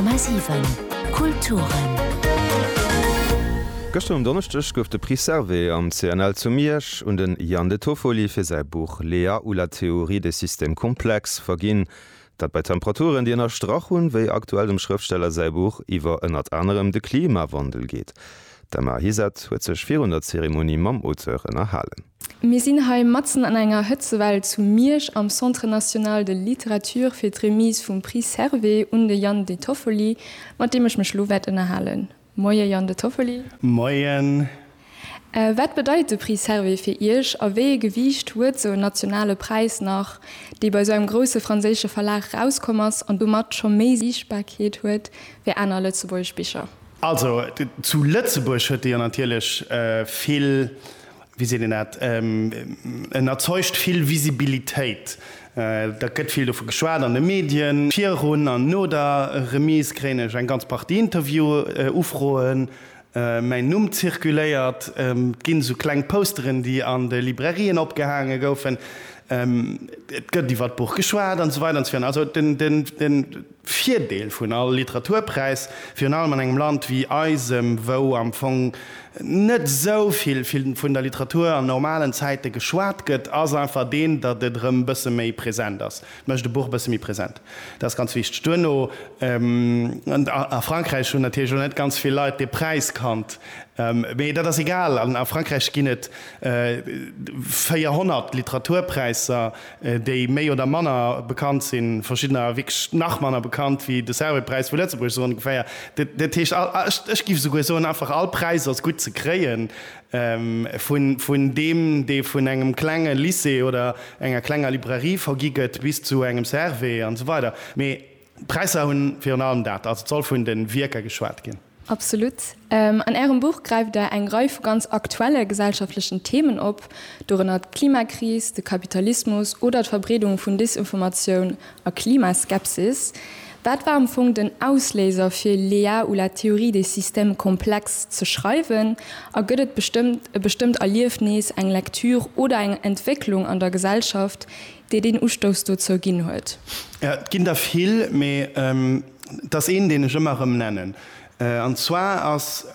10,7 Kulturen. Gëschter um Donneschdeg gouf de Prix Servais am CNL zu Miersch un de Yann De Toffoli fir säi Buch Lea ou la théorie des systèmes complexes verginn, dat bei Temperaturen, déi ënnerstrach hunn, wéi aktuell dem Schrëftsteller säi Buch iwwer ënnert anerem de Klimawandel geet. D'Emma Hisath huet sech virun der Zeremonie mam Auteur ënnerhalen. Mir sinn hei matzen an enger Hëtzewell zu Miersch am Centre National de Littérature fir d'Remise vum Prix Servais un de Jan De Toffoli, mat deem ech mech elo wäert ënnerhalen. Moie Jan De Toffoli. Moien. Wat bedeit de Prix Servais fir Iech a wéi ee Gewiicht huet sou en nationale Präis nach, dee bei sou engem grousse franséische Verlag erauskomm ass an domat scho méi Siichtbarkeet huet wéi aner lëtzebuergesch Bicher? Also zu Lëtzebuerg huet e jo natierlech vill, wéi seet een dat, en erzeugt vill Visibilitéit. Da gëtt vill dovu geschwat an de Medien. Virun an no der Remise kréien ech eng ganz Partie Interview-Ufroen, mäin Numm zirkuléiert, et ginn esou kleng Posteren, déi an de Librairien opgehaange goufen, et gëtt iwwer d'Buch geschwat an esou weider an esou virun. Also den. Virdeel vun all Literaturpräis, virun allem an engem Land wéi eisem, wou am Fong net esou vill vun der Literatur an normalen Zäite geschwat gëtt, ass einfach deen, datt et erëm e bësse méi present ass. Et mécht e Buch e bësse méi present. Dat ass ganz wichteg. Duerno, a Frankräich hunn natierlech och net ganz vill Leit dee Präis kannt, mee dat ass egal. A Frankräich ginn et 400 Literaturpräisser. déi méi oder manner bekannt sinn, verschiddener wierklech nach manner bekannt wéi de Servais-Präis vu Lëtzebuerg, esou ongeféier. Dat heescht, ech giff esouguer soen, einfach all Präis ass gutt ze kréien, vun deem, dee vun engem klenge Lycée oder enger klenger Librairie vergi gëtt, bis zu engem Servais an esou weider. D'Präisser hunn virun allem dat, also d'Soll vun de Wierker, geschwat ginn. Absolut. An Ärem Buch gräift Der eng Rei vu ganz aktuelle gesellschaftlechen Themen op, dorënner d'Klimakris, de Kapitalismus oder d'Verbreedung vun Desinformatioun a Klimaskepsis. Wat war am Fong den Ausléiser fir Lea ou la théorie des systèmes complexes ze schreiwen? A gëtt et bestëmmt e bestëmmt Erliefnis, eng Lektür oder eng Entwécklung an der Gesellschaft, dee deen Ustouss dozou ginn huet. Et ginn der vill, mee et ass een, deen ech ëmmer erëm nennen. An zwar ass,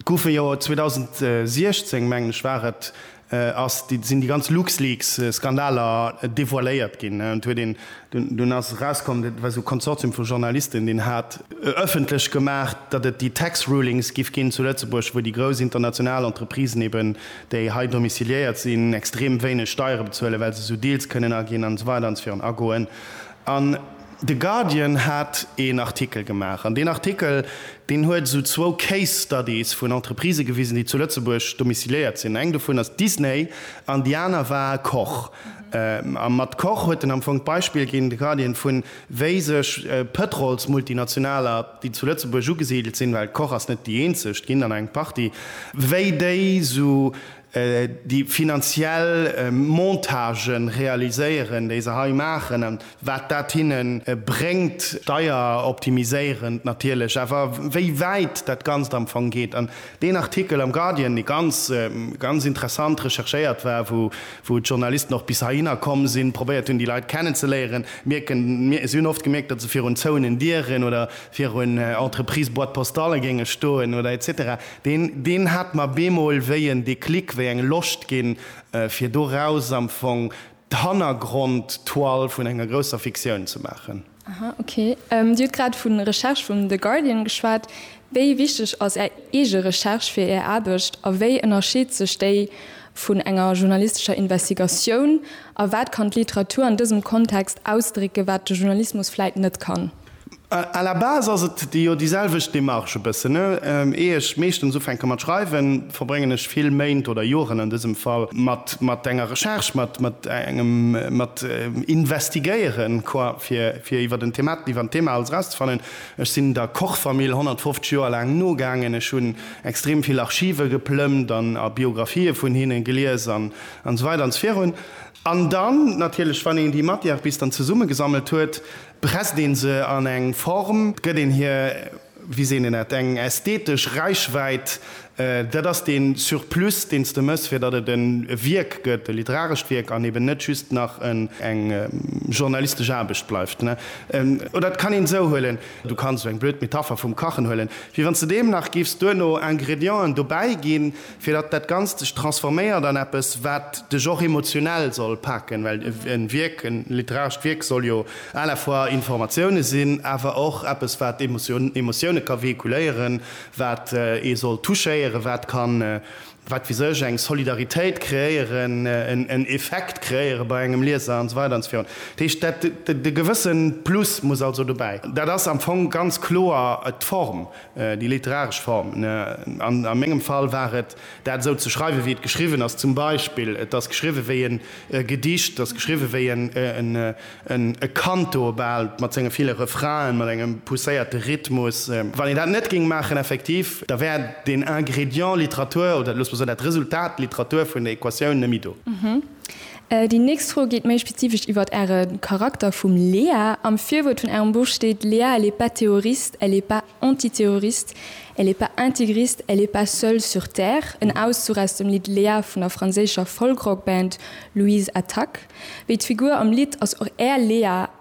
goufe jo 2016, mengen ech war et, ass, sinn déi ganz LuxLeaks-Skandaler devoiléiert ginn. Et huet een, dunn ass erauskomm, dat war esou e Konsortium vu Journalisten, deen hat ëffentlech gemaach, datt et déi Tax Rulings giff ginn zu Lëtzebuerg, wou déi grouss international Entreprisen eben, déi hei domiciliéiert sinn, extrem wéineg Steiere bezuelen, well se esou Deals kënnen aginn an esou weider an esou virun agoen. An de Guardian hat een Artikel gemaach an deen Artikel, deen huet esou zwou Case Studies vun Entreprisë gewisen, déi zu Lëtzebuerg domiciliéiert sinn. Eng dovun ass Disney an déi aner war Koch. A mat Koch huet en am Fong d'Beispill ginn, de Guardian, vun, wéi sech Pëtrolsmultinationaler, déi zu Lëtzebuerg ugesidelt sinn, well d'Koch ass net déi eenzeg, ginn an eng Partie, wéi déi esou déi finanziell Montage realiséieren, déi se hei maachen a wat dat hinne bréngt, steieroptimiséierend natierlech, awer wéi wäit dat Ganzt am Fong geet. Deen Artikel am Guardian, dee ganz, ganz interessant recherchéiert war, wou, wou d'Journalisten och bis heihinner komm sinn, probéiert hunn, déi Leit kennenzeléieren, mierken, mir, si hunn oft gemierkt, datt se virun zouenen Dieren oder virun Entreprise-Boîte-postale géinge stoen oder etc. Deen, deen hat mer bemol wéi en Déclic, wéi eng Loscht ginn, fir doraus am Fong d'Hannergrond-Toile vun enger grousser Fiktioun ze maachen. Aha, ok. Dir hutt grad vu Recherche vum The Guardian geschwat. Wéi wichteg ass Är eege Recherche fir Är Aarbecht a wéi ënnerscheet sech déi vun enger journalistescher Investigatioun? A wat kann d'Literatur an dësem Kontext ausdrécken, wat de Journalismus vläit net kann? À la base ass et jo déi selwecht Démarche e bëssen, ier ech meeschtens ufänke mat schreiwen. verbréngen ech vill Méint oder Joren an dësem Fall mat enger Recherche, mat engem Investigéieren, quoi, fir iwwer en Thema alles erauszefannen. Ech sinn der Koch-Famill 150 Joer laang nogaangen. Ech hunn extrem vill Archive geplëmmt an a Biographië vun hinne gelies an esou weider an esou virun. An dann natierlech, wann een déi Matière bis dann zesummegesammelt huet, presst ee se an eng Form, gëtt een hir wéi seet een dat, eng ästhetesch Räichwäit, dat ass dee Surplus, deen s de méchs, fir datt et e Wierk gëtt, e literarescht Wierk, an eben net just nach eng journalistesch Aarbecht bleift. Oder et kann een esou huelen, du kanns esou eng blöd Metapher vum Kachen huelen, wéi wann s de deem nach giffs duerno Ingredienten dobäiginn, fir datt dat Ganzt sech transforméiert an eppes, wat dech och emotionell soll paken, well e Wierk, e literarescht Wierk soll jo à la fois Informatioune sinn, awer och eppes, wat Emotioune ka véhiculéieren, wat ee soll touchéieren, wat ka, wat weess ech, eng Solidaritéit kreéieren, en Effekt kreéiere bei engem Lieser an esou weider an esou virun. Dat heescht, dat, e gewësse Plus muss also dobäi. Dat ass am Fong ganz kloer d'Form. Déi literaresch Form, a mengem Fall war et, dat esou ze schreiwen, wéi et geschriwwen ass, zum Beispill, et ass geschriwwen wéi en Gedicht, et ass geschriwwen wéi en e Canto bal, mat senge ville Refrainen, mat engem pousséierte Rhythmus. Wann een dat net géing maachen, effektiv, da wär deen Ingrédient Literatur, oder loosse mer soen, dat Resultat Literatur vun der Equatioun net méi do. Déi nächst Fro geet méi spezifesch iwwert Äre Charakter vum Léa. Am Virwuert vun Ärem Buch steet, Léa elle est pas terroriste, elle est pas antiterroriste, elle est pas intégriste, elle est pas seule sur terre, en Auszuch aus dem Lidd Léa vun der franséischer Folkrock-Band Louise Attaque. Wéi d'Figur am Lidd ass och Är Léa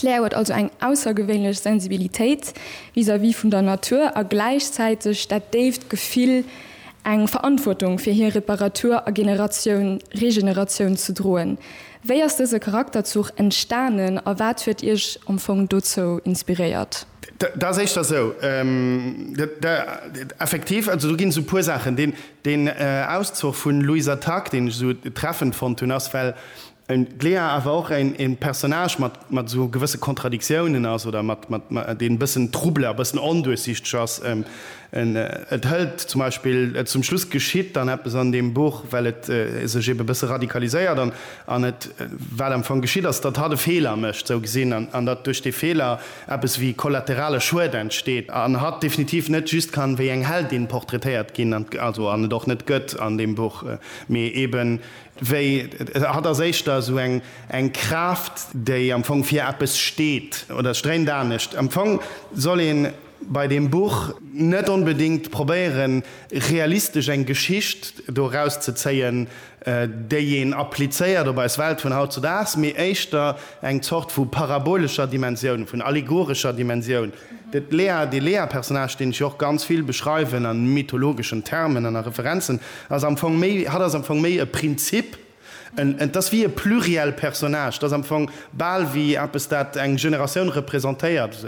D'Lea huet also eng aussergewéinlech Sensibilitéit vis-à-vis vun der Natur a gläichzäiteg dat déift Gefill, eng Verantwortung fir hir Reparatur a Generatioun Regeneratioun ze droen. Wéi ass dëse Charakterzuch entstanen a wat huet Iech am Fong dozou inspiréiert? Dat ass éischter esou, effektiv, also do ginn esou e puer Saachen. Deen Auszuch vun Louisa Tag, deen ech esou treffend fonnt hunn, ass, well En Glea awer och en Personnage mat esou gewësse Kontradiktiounen ass oder deen e bëssen trouble a bëssen onduerchsichteg ass. Et hëlt zum Beispill, zum Schluss geschitt dann eppes an deem Buch, well et sech ebe bësse radikaliséiert an et, wat am Fong geschitt ass, datt hatt e Feeler mécht, sou gesinn, an datt duerch dee Feeler eppes wéi kollaterale Schued entsteet an hatt definitiv net just kann wéi eng Heldin portraitéiert ginn, also an et och net gëtt an deem Buch, mee eben Wéi, hatt ass éischter esou eng Kraaft, déi am Fong fir eppes steet, oder et stréimt anescht. Am Fong soll ee bei deem Buch net onbedéngt probéiere realistesch eng Geschicht do eraus ze zéien, déi een applizéiert op eis Welt vun hautzedaags, mee éischter eng Zort vu parabolescher Dimensioun, vun allegorescher Dimensioun. De Lea, dee Lea-Personnage, deen ech jo och ganz vill beschreiwen a mythologeschen Termen an a Referenzen, ass am Fong méi, hatt ass am Fong méi e Prinzip, en, et ass wéi e pluriel Personnage, et ass am Fong bal wéi eppes, dat eng Generatioun representéiert,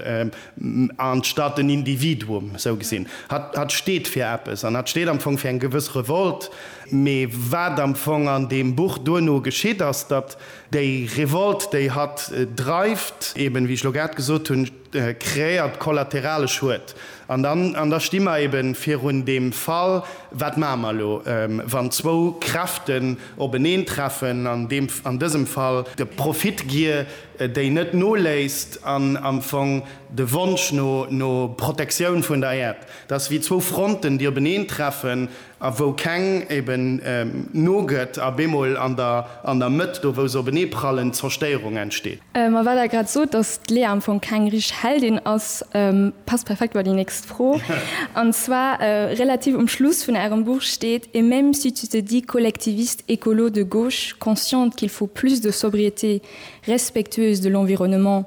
anstatt en Individuum. Esou gesinn, hatt, hatt steet fir eppes an hatt steet am Fong fir eng gewëss Revolt. Mee wat am Fong an deem Buch duerno geschitt, ass, datt déi Revolt, déi hatt dreift, eben, wéi ech elo grad gesot hunn, Kreéiert kollaterale Schued. An dann, an da sti mer ebe virun deem Fall, Wat maache mer elo, wann zwou Kräften openeen treffen, an deem, an dësem Fall de Profitgier, déi net noléisst, an am Fong de Wonsch no, no Protektioun vun der Äerd. Dat ass wéi zwou Fronten, déi openeen treffen. a wou keng eben nogëtt a bemol an der an der Mëtt, do wou se openee prallen, Zerstéierung entsteet. Ma well Der grad sot, datt d'Lea am Fong keng richteg Heldin ass, passt perfekt bei déi nächst Fro. An zwar, relativ um Schluss vun Ärem Buch steet, Et même si tu te dis collectiviste écolo de gauche, consciente qu'il faut plus de sobriété, respectueuse de l'environnement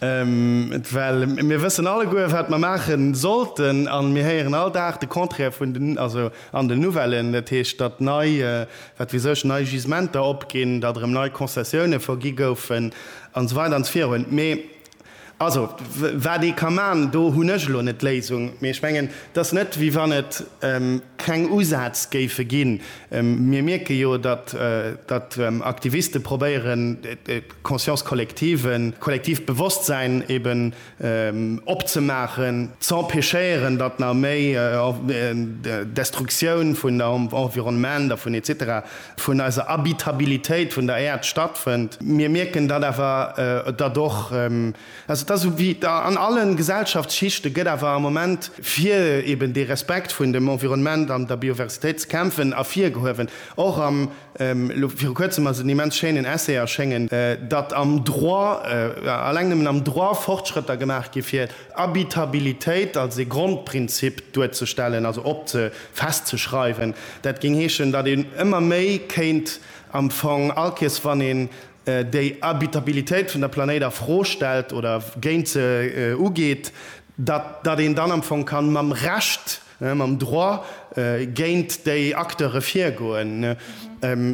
Well mir wëssen alleguer, wat mer maache sollten, a mir héieren all Dag de Contraire vun den, also an den Nouvellen, dat heescht, datt nei, wat wier sech, nei Gisementer opginn, datt erëm nei Concessioune vergi goufen an esou weider an esou virun. Mee also wat ee ka maachen, do hunn ech elo net d'Léisung, mee ech mengen, et ass net, wéi wann et keng Usätz géife ginn. Mir mierke jo, datt Aktiviste probéieren, Conscience collective, kollektiivt Bewosstsäin eben opzemaachen, z'empêchéieren, datt nach méi Destruktioun vun der Environnement a vun etc. Vun eiser Habitabilitéit vun der Äerd stattfënnt. Mir mierken dat awer, datt och, also dat ass ewéi an alle Gesellschaftsschichte gëtt awer am Moment, fir eben dee Respekt vun dem Environnement an der Biodiversitéit ze kämpfen, ervirgehuewen, och am. Elo viru kuerzem ass et en immens schéinen Essay erschéngen, datt am Droit, alleng nëmmen am Droit, Fortschrëtter gemaach gi fir Habitabilitéit als e Grondprinzip duerzestellen, also op ze, festzeschreiwen. Dat géing heeschen, datt een ëmmer méi kéint am Fong all Kees, wann een déi Habitabilitéit vun der Planéit a Fro stellt oder géint se ugeet, datt een dann am Fong kann mam Recht mam Droit géint déi Acteure virgoen.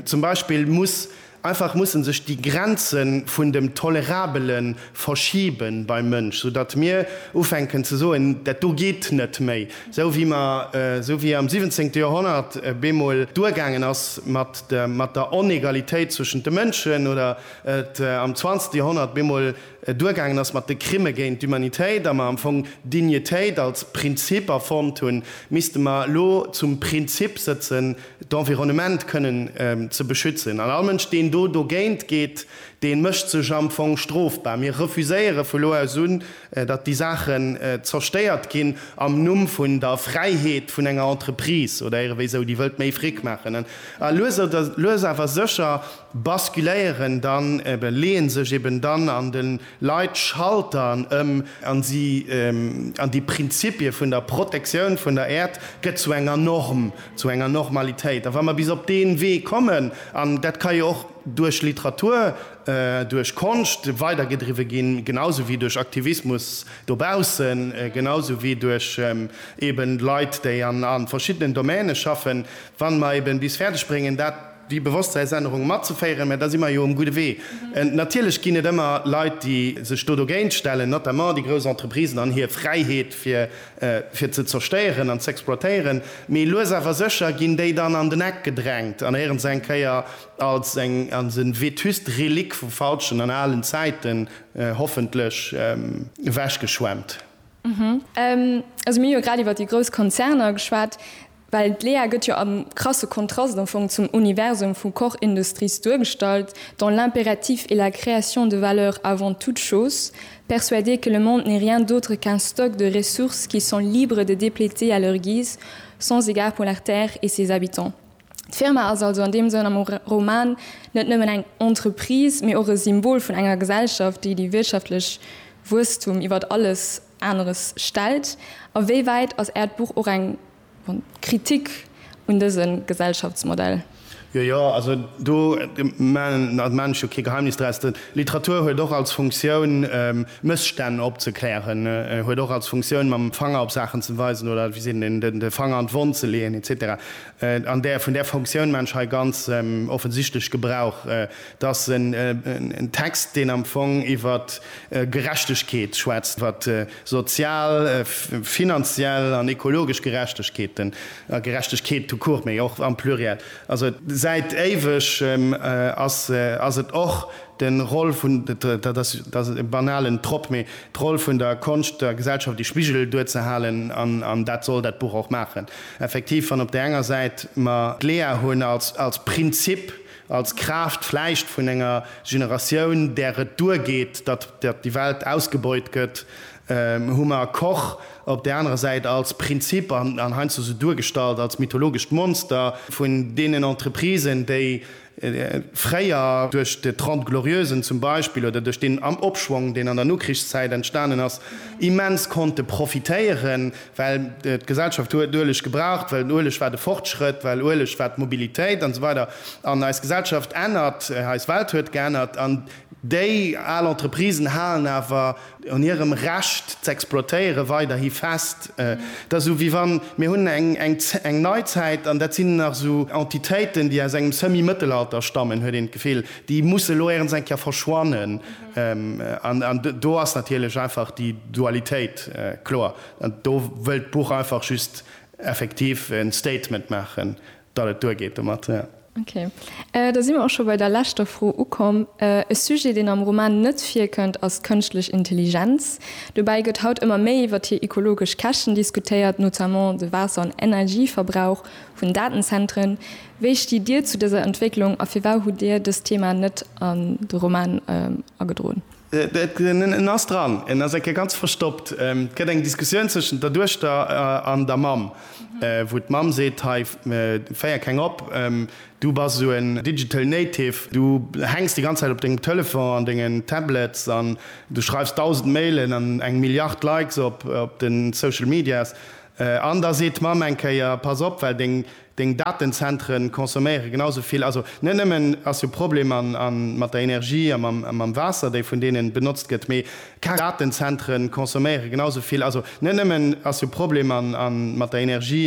Zum Beispill muss einfach mussen sech déi Grenze vun dem Tolerabele verschibe beim Mënsch, sou datt mir ufänken ze soen, dat do geet net méi, esou wéi mer, esou wéi am siwwenzéngte Joerhonnert bemol duergaangen ass mat der Onegalitéit zwëschent de Mënschen oder et am zwanzegste Joerhonnert bemol duergaangen ass mat de Crime géint d'Humanitéit a mer am Fong d'Dignitéit als Prinzip erfonnt hunn, misste mer elo zum Prinzip sëtzen, d'Environnement kënnen ze beschützen. An all Mënsch, deen do dogéint geet, dee mécht sech am Fong strofbar. Mir refuséiere vu lo aus un, datt déi Saachen zerstéiert ginn am Numm vun der Fräiheet vun enger Entreprise oder ierewéi esou, déi wëllt méi Fric maachen. A lues awer sécher, basculéieren dann, leeën sech eben dann an de Leit Schalteren ëm an si, an déi Prinzipie vun der Protektioun vun der Äerd gëtt zu enger Norm, zu enger Normalitéit. A wa mer bis op dee Wee kommen, an dat ka jo och duerch Literatur, duerch Konscht weidergedriwwe ginn, genau sou wéi duerch Aktivismus dobaussen, genau sou wéi duerch eben Leit, déi an verschiddenen Domäne schaffen, wa mer eben bis fäerdeg bréngen dat, déi Bewosstseinsännerung matzeféieren, mä da si mer jo um gudde Wee. Natierlech ginn et ëmmer Leit, déi sech do dogéint stellen, notamment déi grouss Entreprisen an hir Fräiheet fir fir ze zerstéieren an z'exploitéieren, mee lues awer sécher ginn déi dann an den Eck gedrängt an héieren se eng Kéier als eng als e vétuste Relique vu falschen an alen Zäiten hoffentlech ewechgeschwemmt. Also mir hu jo grad iwwert déi grouss Konzerner geschwat. Well d'Lea gëtt jo am krasse Kontrast am Fong zum Universum vu Koch Industries duergestallt, dans l'impératif et la création de valeur avant toute chose, persuadée que le monde n'est rien d'autre qu'un stock de ressources qui sont libres de dépléter à leur guise, sans égard pour la terre et ses habitants. D'Firma ass also an deem Sënn am Roman net nëmmen eng Entreprise, mee och e Symbol vun enger Gesellschaft, déi déi wirtschaftlech Wuesstum iwwert alles. aneres stellt? A wéi wäit ass Äert Buch och eng Kritik un dëse Gesellschaftsmodell? Jo, jo, also do maachen ech jo kee Geheimnis draus. Literatur huet och als Funktioun, Mësstänn opzeklären, huet och als Funktioun, mam Fanger op Saachen ze weisen oder, wéi seet een, de Fanger an d'Wonn ze leeën, et cetera. An där, vun där Funktioun maachen ech hei ganz offensichtlech Gebrauch. Et ass en Text, deen am Fong iwwer Gerechtegkeet schwätzt, wat sozial, finanziell an ekologesch Gerechtegkeeten a Gerechtegkeet tout court, mee och am Pluriel. Also säit éiweg ass et och de Rôle vun, dat ass e banalen Trop, mee d'Roll vun der Konscht der Gesellschaft ee Spigel duerzehalen, an dat soll dat Buch och maachen. Effektiv, wann op där enger Säit mer d'Lea hunn als Prinzip, Als Kraaft vläicht vun enger Generatioun, där et duergeet, datt déi Welt ausgebeut gëtt, hu mer Koch op där anerer Säit als Prinzip an heiansdo sou duergestallt als mythologescht Monster vun deenen Entreprisen, déi fréier duerch de Trente Glorieusen zum Beispill oder duerch deen Opschwong, deen an der Nokrichszäit entstanen ass, immens konnte profitéieren. well d'Gesellschaft huet Ueleg gebraucht, well den Ueleg war de Fortschrëtt, well Ueleg war d'Mobilitéit an esou weider an eis Gesellschaft ännert, eis Welt huet geännert an déi al Entreprisen halen awer un hirem Recht z'exploitéiere weiderhi fest. Et ass esou wéi wann, mir hunn eng Neizäit an dat sinn nach esou Entitéiten, déi aus engem Semi-Mëttelalter stammen, huet een d'Gefill, déi musse elo éierens eng Kéier verschwannen. An do ass natierlech einfach déi Dualitéit kloer. An do wëllt d'Buch einfach just effektiv e Statement maachen, datt et duergeet domat. Ok. Da si mer och scho bei der leschter Fro ukomm. E Sujet, deen am Roman net virkënnt, ass d'kënschtlech Intelligenz. Dobäi gëtt haut ëmmer méi iwwer hir ekologesch Käschten diskutéiert, notamment de Waasser an Energieverbrauch vun Datenzentren. Wéi stitt Dir zu dëser Entwécklung a firwau hutt Dir dëst Thema net an de Roman agedroen? En ass dran, en ass eng Kéier ganz verstoppt. Et gëtt eng Diskussioun zwëschent der Duechter an der Mamm, wou d'Mamm seet, Hei, féier keng op, du bass esou en digital native, du hänks déi ganz Zäit op dengem Telefon an denge Tablets an du schreifs dausend Mailen an eng Milliard Likes op de Social Medias. An da seet d'Mamm eng Kéier, Pass op, well deng Deng Datenzentre consomméiere genau esou vill. Also net nëmmen ass jo Problem mat der Energie a mam Waasser, déi vun deenen benotzt gëtt, mee deng Datenzentre consomméiere genau esou vill. Also net nëmmen ass jo Problem mat der Energie.